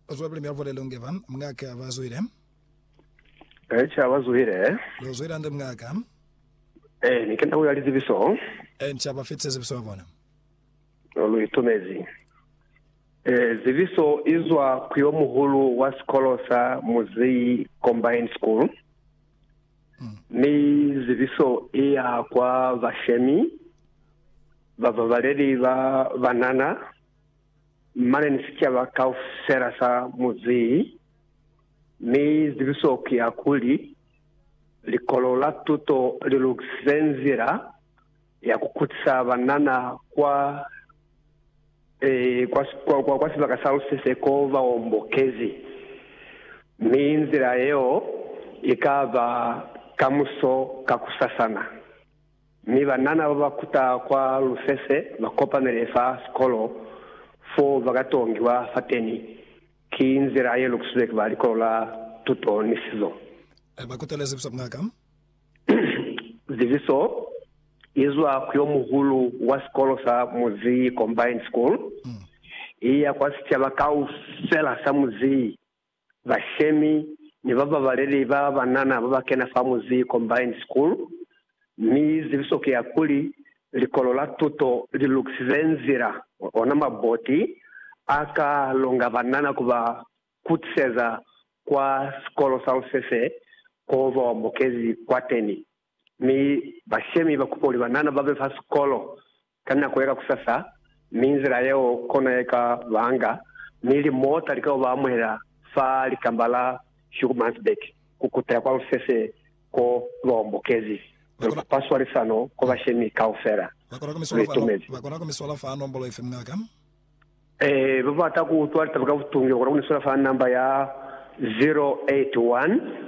Uzwa pele myavole lungeva mngaka bazwile. Echa bazwile. Luzwile ande mngaka. Eh, ni kenda uya lizibiso. Encha bafitse zibiso ya bona. Lu itumezi. Eh, zibiso izwa kuyo muhulu wa sikolo sa Muzeyi Combined School. Mi zibiso iya kwa bashemi, bababaleli ba banana, mane ni sicaba kaufela sa muzi, mi zibiso ki ya kuli, Likolo la Tuto li lukisize nzila ya ku kutisa banana kwa, eh, kwa, kwa, kwa, kwa sibaka sa lusese ko ba hombokezi, mi nzila yeo i ka ba kamuso kakusasana. Mi banana ba ba kuta kwa lufese ba kopamele fa sikolo fo ba ka tongiwa fateni. Ki nzila ye lukusizwe ki ba Likolo la Tuto ni Sizo. Ba kutelezi ku zwa ku maka. Zibiso i zwa ku yo muhulu wa sikolo sa muzi, Combined School, i ya kwa sicaba kaufela sa muzi. bashemi ni bababaleli ba banana babakena fa Muzii Combined School, mi zibiso ki ya kuli, Likolo la Tuto li lukisize nzila, ona maboti a ka longa banana ku ba kutiseza kwa Sikolo sa Lusese koo ba bamukezi kwateni. Mi bashemi ba kupa kuli banana ba be fa sikolo ka nako ye ka kusasa, mi nzila yeo kona ye ka banga mi limota li ka yo ba amuhela fa likamba la Schoenemannsberg ku kutela kwa lusese ko lu ba ombokezi. Lu kupa swalisano kwa bashemi kaufela. Lu itumezi. Ba kona ku mi swala fa nombolo ifi, muñaka? Ee, ba bata ku utwa litaba ka butungi ba kona ku ni swala fa namba ya 081.